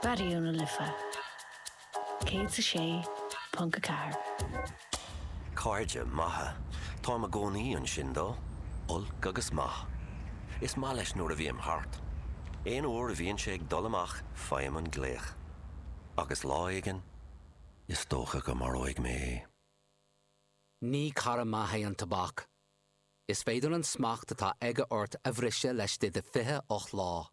Raidió na Life 106.4. Cairde maithe. Táim i gcónaí ansin dó, olc agus maith. Is maith leis nuair a bhím thart. Aon uair a bhíonn sé ag dul amach faighim an glaoch. Agus lá éigin, is dócha go maróidh mé é. Ní cara maith é an tobac. Is féidir an smacht atá aige ort a bhriseadh laistigh de 28 lá.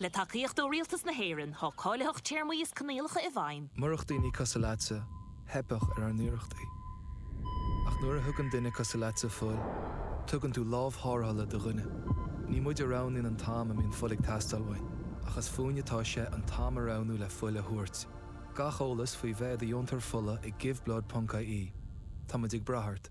Le tacaíocht ó Rialtas na hÉireann, tá cáilitheacht téarmaí is coinníollacha i bhfeidhm. Murach daoine cosúil leatsa, theipfeadh ar ár n-iarrachtaí. Ach nuair a thugann duine cosúil leatsa fuil, tugann tú lámh tharrthála do dhuine. Ní muid a roghnaíonn an t-am a mbíonn fuil ag teastáil uainn, ach is fúinn atá sé an t-am a roghnú le fuil a thabhairt. Gach eolas faoi bheith i do dheontóir fola ag Give Blood ponc ie Tá muid ag brath ort.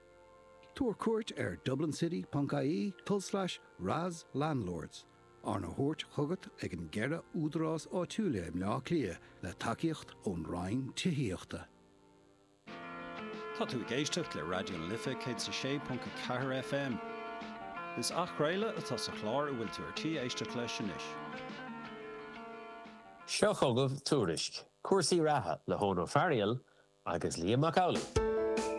Tabhair cuairt ar dublincity.ie tulslais RAS Landlords, arna thabhairt chugat ag an gceithre údarás áitiúil i mBleá Cliath le tacaíocht ón Roinn Tithíochta. Tá tú ag éisteacht le Raidió na Life 106.4 FM. Is athchraoladh atá sa chlár a bhfuil tú ar tí éisteacht leis anois. Seo chugaibh tuairisc cúrsaí reatha le hEoghan Ó Fearghail agus Liam Mac Amhlaigh.